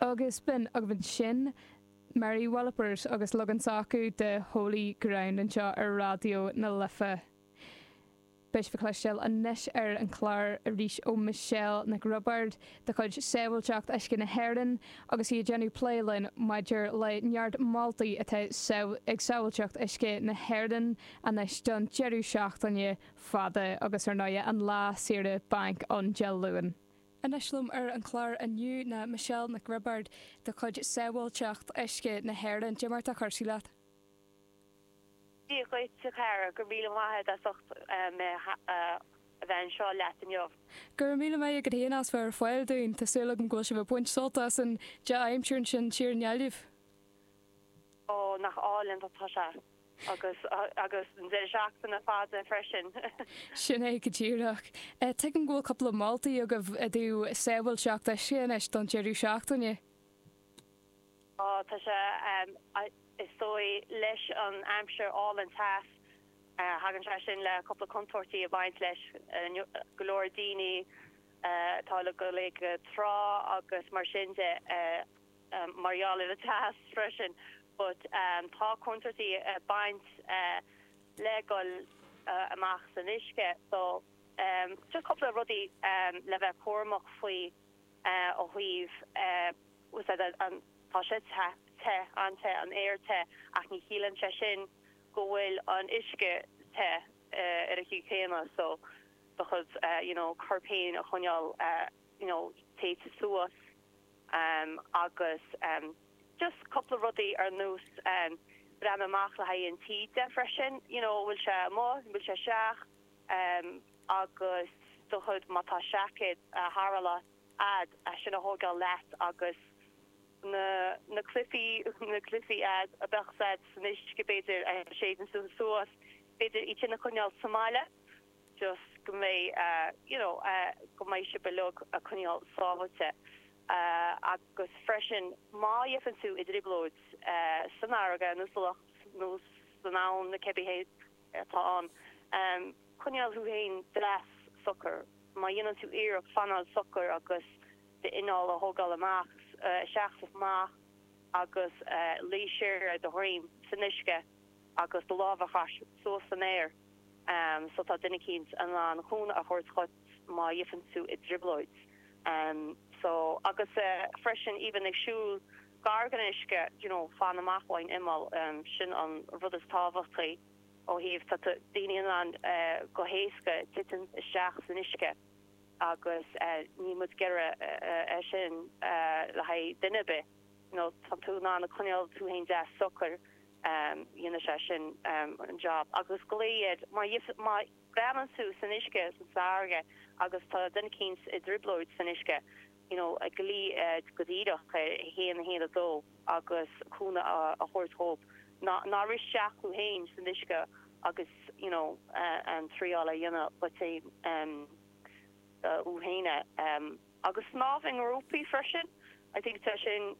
Agus b'in, agus b'shin Mary Wallopers agus leagan s'acu de Holy Ground anseo ar Raidió na Life. Beidh sibh ag cloisteáil anois ar an chlár arís ó Michelle Nic Roibeárd de chuid Sábhailteacht Uisce na hÉireann agus í ag déanamh plé linn maidir le neart moltaí atá ag Sábháilteacht Uisce na hÉireann anois don deireadh seachtaine fada agus ar ndóigh an lá saoire bainc ann Dé Luain. Anois liom ar an chlár inniu ná Michelle Nic Roibeárd de chuid Sábháilteacht Uisce na hÉireann. Cé mar atá cúrsaí leat. Dia dhuit a Chara, go raibh míle maith agat as ucht mé a bheith anseo leat inniu. Go raibh míle maith agat fhéin as bheith ar fáil dúinn, tá súil agam go bhfuil sibh ag baint sult as an dea-aimsir ansin thiar i nGaillimh. Ó, nach álainn atá sé. Agus, agus an deireadh seachtaine fada freisin! Sin é go díreach. Tuigim go bhfuil cúpla moltaí agaibh i dtaobh sábháilteacht uisce anois don deireadh seachtaine. Ó tá sé, is dóigh leis an aimsir álainn, teas, thagann sé sin le cúpla contúirtí ag baint leis, go leor daoine atá ag dul go trá agus mar sin de. mar gheall ar an teas freisin but tá contúirtí ag baint le dul amach san uisce so just cúpla rudaí le bheith cúramach faoi ó thaobh úsáid an tá sé te te an-te an aer te ach ní chiallaíonn sé sin go bhfuil an uisce te ar an chaoi chéanna so do chuid you know corp féin a choinneáil you know téite suas Am agus just cúpla rudaí ar nós breathnú amach le haghaidh an taoide freisin, you know an bhfuil sé amuigh, an bhfuil sé isteach agus do chuid má tá seaicéad tarrthála a'd sin a thógáil leat agus na na cluichí na cluichí a'd a bheadh a'd san uisce b'fhéidir a séideann suas b'fhéidir iad sin a choinneáil sa mbaile. just go mbeidh you know go mbeidh sibh in ann a choinneáil sábháilte agus freisin má fhaigheann tú i dtrioblóid san fharraige nó sa loch nó san abhainn na cibé cén áit atá ann coinneáil thú féin deas socair má dhéanann tú iarracht fanáil socair agus d'anáil a thógáil amach isteach is amach agus luí siar ar do dhroim san uisce. agus do lámh a chaitheamh suas san aer so tá duine eicínt in ann cúnamh a thabhairt dhuit má gheibheann tú i dtrioblóid so agus freisin even ag siúl gar gon uisce you know fan amach ón imeall sin an rud is tábhachtaí ó thaobh tá daoine in ann go héasca titim isteach san uisce agus níl muid ag iarraidh sin le haghaidh duine ar bith. má tá tú in ann a choinneáil tú fhéin deas socair, déanfaidh sé sin an jab. Agus glaoigh, má bhreathnaíonn tú san uisce, sa bhfarraige, agus tá duine eicínt i dtrioblóid san uisce, you know, glaoigh go díreach 112 agus cúnamh a thabhairt dhóibh. Ná rith isteach thú fhéin san uisce agus, you know, triáil a dhéanamh duit fhéin. do dhuine agus snámh i ngrúpaí freisin I think tá sin.